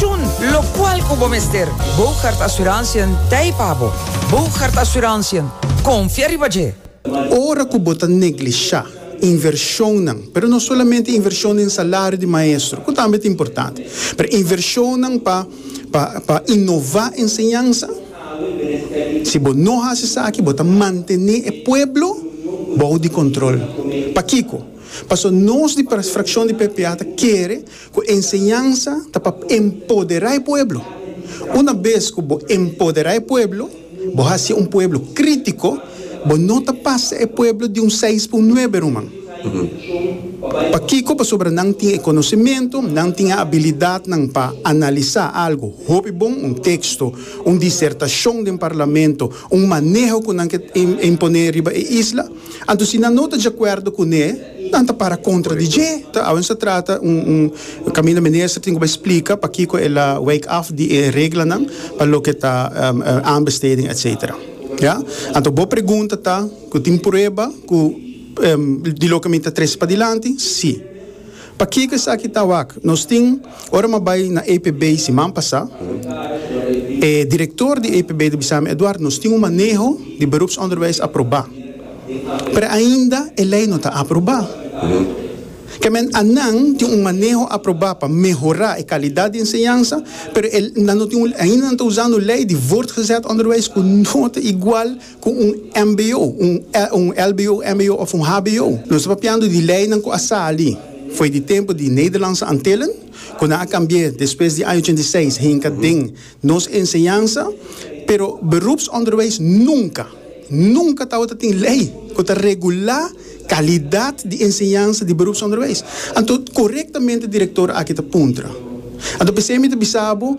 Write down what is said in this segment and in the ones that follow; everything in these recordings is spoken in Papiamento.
Tjun, locual cu bo mester. Bougaard Assurantiën ta ei pa bo. Bougaard Assurantiën, confia riba dje! Ora cu bo ta neglisha inversionnan, pero no solamente inversion den salario di maestro, cu tambe ta importante, pero inversionnan pa pa pa innova enseñansa, si bo no haci esaki bo ta mantene e pueblo bou di control. Pakico? Pasobra nos di Fraccion di PPA ta kere. Ku enseñansa ta pa empoderá e pueblo. Una bes ku bo empoderá e pueblo, bo hasié un pueblo krítiko, bo no ta pasa e pueblo di un seis pa un nuebe, ruman. Pakiko? Pasobra nan tin e konosementu, nan tin e abilidatnan pa analisá algu hopi bon, un teksto, un disertashon den parlamento, un maneho ku nan ke imponé riba e isla. Anto si nan no ta djakuerdo kuné, nan ta para kontra di dje. Ta awe nos a trata un un kaminda minister tin ku bai splika pakiko el a wijk af di e reglanan pa loke ta aanbesteding etsetera. Ya. Anto bo pregunta ta ku tin prueba ku di loke mi ta trese padilanti? Sí. Pakico esaki ta wak? Nos tin, ora m'a bay na APB siman pasa, e director di APB ta bisami, Eduardo, nos tin un maneho di beroepsonderwijs aproba, pero ainda e ley no ta aproba. Ke men anan tin un maneho aproba pa mehora e calidad di enseñansa, pero e nan no tin un, ainda nan ta usando ley di voortgezet onderwijs cu no ta igual, Ku un mbo, un lbo, mbo òf un hbo. Nos ta papiando di leinan ku a sali fo'i di tempu di Nederlandse Antillen, ku nan a kambi'é despues di año ochenta i seis hinka den nos enseñansa. Pero beroepsonderwijs nunka, nunka tabata tin lei ku ta regulá kalidat di enseñansa di beroepsonderwijs. Anto korektamente direktor aki ta puntra. Anto p'esei mi ta bisa bo.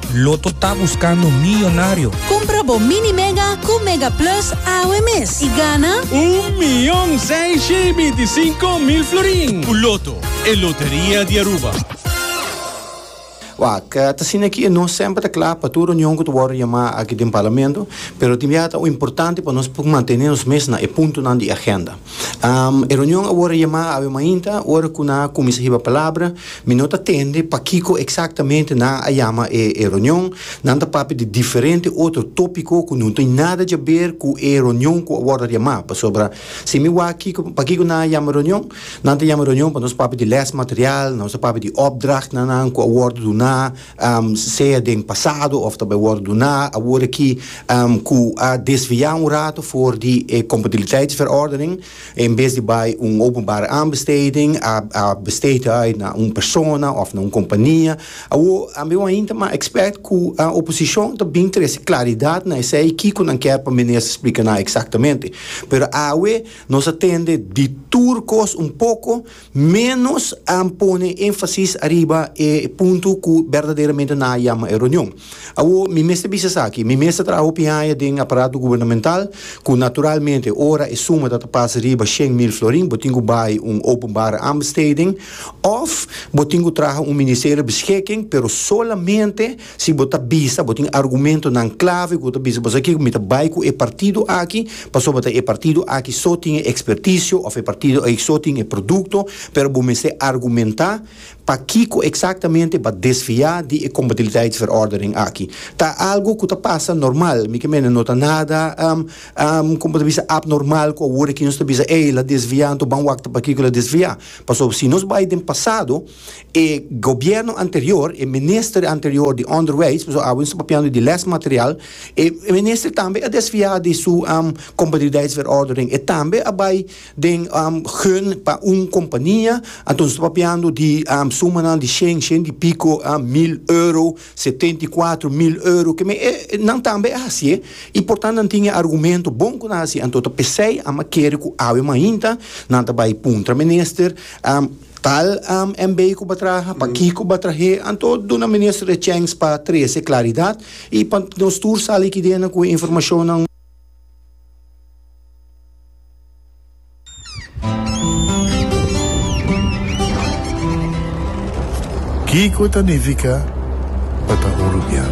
Lotto ta buscando millonario. Cumpra bo Mini Mega cu Mega Plus awe mes y gana. Un mion seiscientos y binticinco mil florin. Cu Lotto, e loteria di Aruba. Wak, ta asina aki e nos semper ta kla pa tur reunion ku ta wòrdu yamá aki den Parlamento, pero tin bia ta importante pa nos por mantene nos mes na e puntonan di agenda. E reunion awor a yama awe mainta, ora ku nan a kuminsá hiba palabra. Mi no ta tende pakiko eksaktamente nan a yama e reunion. Nan ta papia di diferente otro tópiko ku no tin nada dje ber ku e reunion ku a wòrdu yamá. Pasobra si mi wak kiko pakiko nan a yama reunion, nan ta yama reunion pa nos papia di lèsmaterial, nos ta papia di opdrachtnan ku a wòrdu duná, sea den pasado of ta bai wòrdu duná awor aki ku a desviá un rato for di e kompatibiliteitsverordening, en bes di bai un openbare aanbesteding a a besteed uit na un persona of na un kompania. Awor ami wou hinta mas ekspèkt ku oposishon ta bin trese klaridat na esei kiko nan kèr pa Minister splika nan eksaktamente. Pero awe nos a tende di tur kos un poko. Ménos a pone énfasis ariba e punto ku berdaderamente nan a yama e reunion. Awor, mi mester bisa esaki, mi mes ta traha hopi haña den aparato gubernamental, ku naturalmente ora e suma ta ta pas riba shen mil florin, bo tin ku bai un openbare aanbesteding òf bo tin ku traha un ministerio beschikking, pero solamente Si bo ta bisa bo tin argumentonan klave ku ta bisa bo sa kiko mi ta bai ku e partido aki pasobra ta e partido aki so tin e ekspertisio òf e partido aki so tin e produkto pero bo mester argumentá pakiko eksaktamente bo a desviá di e kompatibiliteitsverordening aki. Ta algu ku ta pasa normal mi ke mene no ta nada kon bo ta bisa apnormal ku awor aki nos ta bisa ey el a desviá anto ban wak ta pakiko el a desviá pasobra si nos bai den pasado E gobierno anterior, e minister anterior di onderwijs, pasobra awe nos ta papiando di lesmaterial, e minister tambe a desfia di su competitiviteitsverordening, e tambe a bai den gun pa un compania, anto nos ta papiando di sumanan di shen, shen di pico mil euro, setenta i kuater mil euro, keme e nan tambe a hacié y por tanto nan tin e argumento bon cu nan hacié, anto ta pesey a kere cu awe mainta nan ta bai puntra minister. Tal AMB ku ba traha, pa ki ku ba trah'é, anto duna minister e chèns pa trese klaridat i pa nos tur sali kidena ku e informashonnan. Kiko ta nifiká pa ta un rubian?